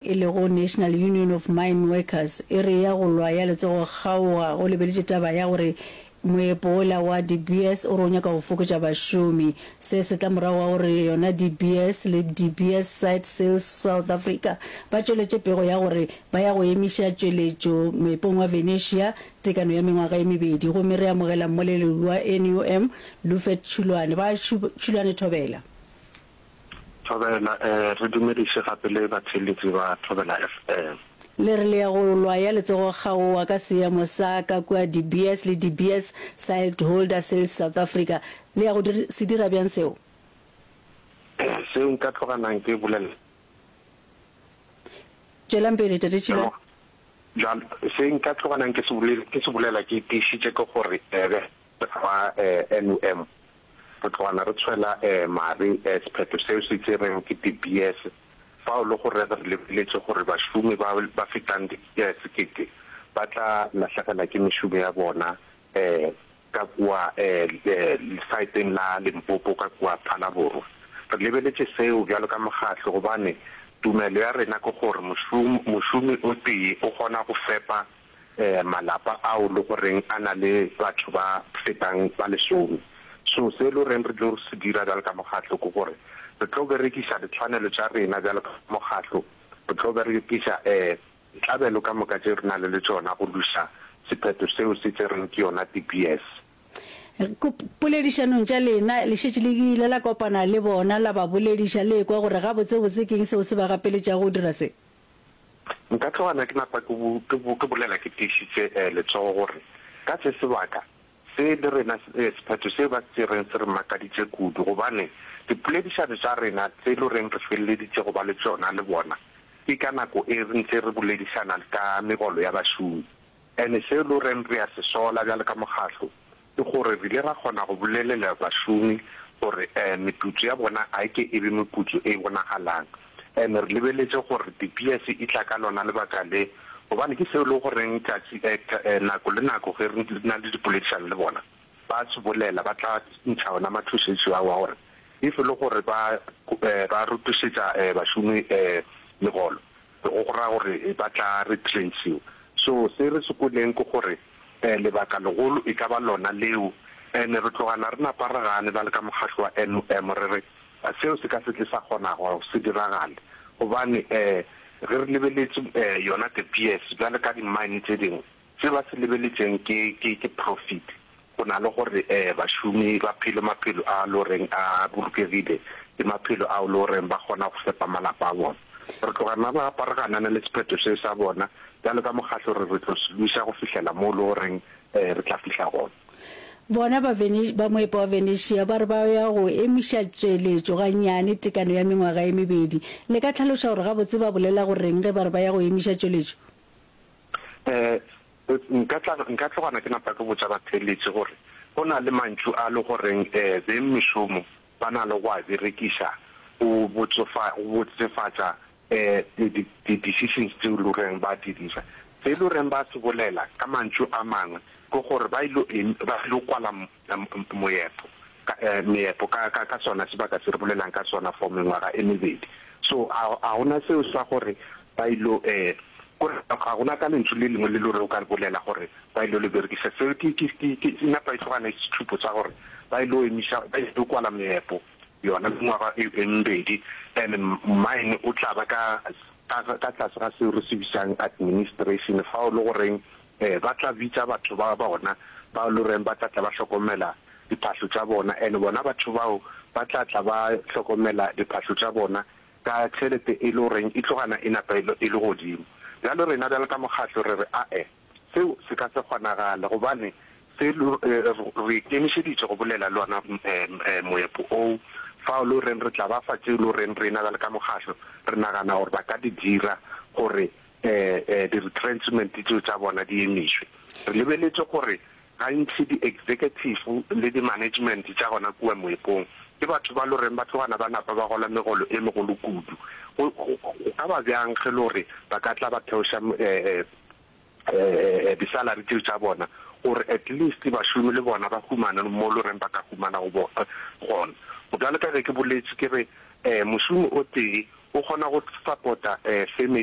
e lego National Union of Mine Workers, e re ya go lwa ya letsogo kgaoga go lebeletše taba ya gore moepo wola wa De Beers o re o nyaka go fokotša bašomi. Se se tla morago ga gore yona De Beers le De Beers Site Sales South Africa ba tšweletše pego ya gore ba ya go emiša tšweletšo moepong wa Venetia tekano ya mengwaga e mebedi. Gomme re amogela mmoleleli wa NUM, Lufet Tshulwane. Ba Tshulwane, thobela. Thobela eh Re dumediše gape le batheeletši ba Thobela FM. Le re le ya go lwa ya letsogo kgaowa ka seemo sa ka kua De Beers le De Beers Siltholder Sales South Africa. Le ya go dir, se dira bjang seo? Eh Seo nka tloga nang ke bolela. Tšwelang pele, Tate Tšhilane. Bjal, se nka tloga nang ke se bolela, ke se bolela ke tiišitše ke gore eh, ba eh, NUM Re tlogana re tshwela mare sephetho seo se tšerwego ke De Beers fao le go reg re lebeletše gore bašomi ba ba fetang di sekete ba tla lahlegelwa ke mešomo ya bona ka kua lesaeteng la Limpopo ka kua Phalaborwa. Re lebeletše seo bjalo ka mokgatlo gobane tumelo ya rena ke gore mošomi o tee o kgona go fepa malapa ao le go reng a na le batho ba fetang ba lesome. So se e lo reng re tlo se dira bjalo ka mokgatlo ke gore re tlo berekiša ditshwanelo tša rena bjalo ka mokgatlo, re tlo berekiša ditlabelo ka moka tše re na le le tšona go lwisa sephetho seo se tšerweng ke yona De Beers. Ko poledišanong tša lena le šetše le ile la kopana le bona la ba bolediša le ekwa gore gabotsebotse ke eng seo se ba gapeletšago go dira se? Nka tloga na ke napa ke bolela ke tiišitše letsogo gore ka se sebaka se le rena sephetho se ba se tšereng se re makaditše kudu gobane dipoledišano tša rena tse e le goreng re feleleditše go ba le tšona le bona ke ka nako e re ntše re boledišana ka megolo ya bašomi and seo e le goreng re a se sola bjalo ka mokgatlo Ke gore re ile ra kgona go bolelela bašomi gore meputso ya bona ga e ke e be meputso e e bonagalang. And re lebeletše gore di-BS e tla ka lona lebaka le, gobane ke seo e lego goreng tšatši nako le nako ge re na le dipoledišano le bona, ba a se bolela, ba tla ntšha ona mathošetšo ao a gore if e le gore ba rutišetša bašomi megolo, Go ra gore ba tla replaceiwa. So se re se kweleng ke gore lebaka legolo e ka ba lona leo. And re tlogana re napa re gane ba le ka mokgatlo wa NUM re re seo se ka se tle sa kgona go se diragale gobane ge re lebeletse yona De Beers bjale ka di mine tse dingwe Se ba se lebeletšeng ke, ke, ke profit, go na le gore um bašomi ba phele maphelo a lo reng a bolokegile, ke maphelo ao lo reng ba kgona go fepa malapa a bona. Re tloga na ba apareganana le sephetho se sa bona, bjalo ka Mokgatlo re, re tlo se lwisa go fihlela moo lo reng um re tla fihla gona. Bona ba Vene, ba moepa wa Venetia ba re ba ya go emiša tšweletšo gannyane, tekano ya mengwaga e mebedi. Le ka tlhaloša gore gabotse ba bolela go reng ge ba re ba ya go emiša tšweletšo? um nka tla nka tlogana ke napa ke botša batheeletši gore go na le mantšu a le goreng um beng mešomo ba na le go a berekiša go botsofa go botsefatša um di di decisions tseo le goreng ba di dira se le goreng ba se bolela ka mantšu a mangwe ke gore ba ile ba ile kwala moepo, ka, meepo, ka, ka, ka sona sebaka se re bolelang ka sona for mengwaga e mebedi. So, a, a go na seo sa gore ba ilo, eh, kore ga go na ka lentšu le lengwe le lore o ka le bolela gore ba ilo le berekisa. Seo ke, ke, ke, ke e napa e tlogana le setšhupo sa gore ba ilo emiša, ba ilo kwala meepo yona mengwaga e, e mebedi. And mine o tla ba ka, ka, ka tlase ga seo re se bitsang administration, fao le goreng Ee, ba tla bitša batho ba bona bao e le goreng ba tla tla ba hlokomela diphahlo tša bona, and bona batho bao ba tla tla ba hlokomela diphahlo tša bona ka tšhelete e le goreng e tlo gana e napa e le godimo. Bjalo rena bjalo ka mokgatlo re re ae, seo se ka se kgonagale gobane se re ikemišeditše go bolela le ona moepo oo fao e le goreng re tla ba fa tšeo e le goreng rena bjalo ka mokgatlo re nagana gore ba ka di dira gore eh, di-retrenchment tseo tša bona di emišwe. Re lebeletše gore gantši di-executive le di-management tša gona kua moepong ke batho ba lo reng ba tlogana ba napa ba gola megolo e megolo kudu. Go ka ba bjang ge le gore ba ka tla ba theoša eh, eh, eh, disalary tseo tša bona gore at least bašomi le bona ba humane mo lo reng ba ka humana go bona gona. Go bjale ka ge ke boletše ke re um mošomi o tee o kgona go supporta um family